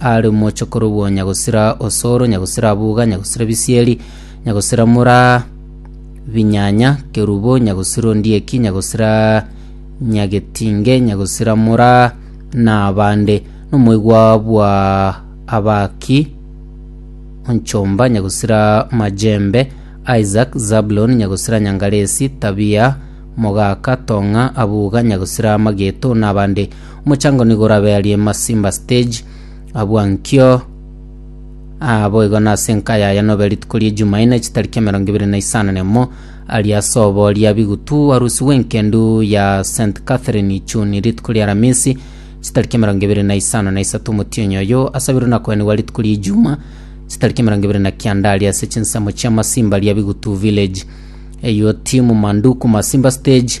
Are omoche korobwo nyagosira osoro, nyagosira abuga, nyagosira bisieri, nyagosira mura binyanya, kerubo, nyagosira ondieki, nyagosira nyagetinge, nyagosira mura na abande, nomoigwa bwa abaki onchomba, nyagosira majembe, Isaac, Zabulon, nyagosira nyangaresi, Tabia, mogaka, tong'a, abuga, nyagosira amageto, na abande. Mochango nigo orabe aria Masimba Stage, abua nkio Aa boigo nase enka yaya nobe rituko ria Ejumaine chitariki emerongo ebere na isano na emo aria ase obo ria bigutu arusi bw'enkendu ya St Catherine Ichuni rituko ria Aramisi chitariki emerongo ebere na isano na isato omotienyi oyo asabirwe na koenigwa rituko ria Ijuma chitariki emerongo ebere na kianda aria ase chinsemo chia Masimba ria bigutu village Eyio timu Manduku Masimba Stage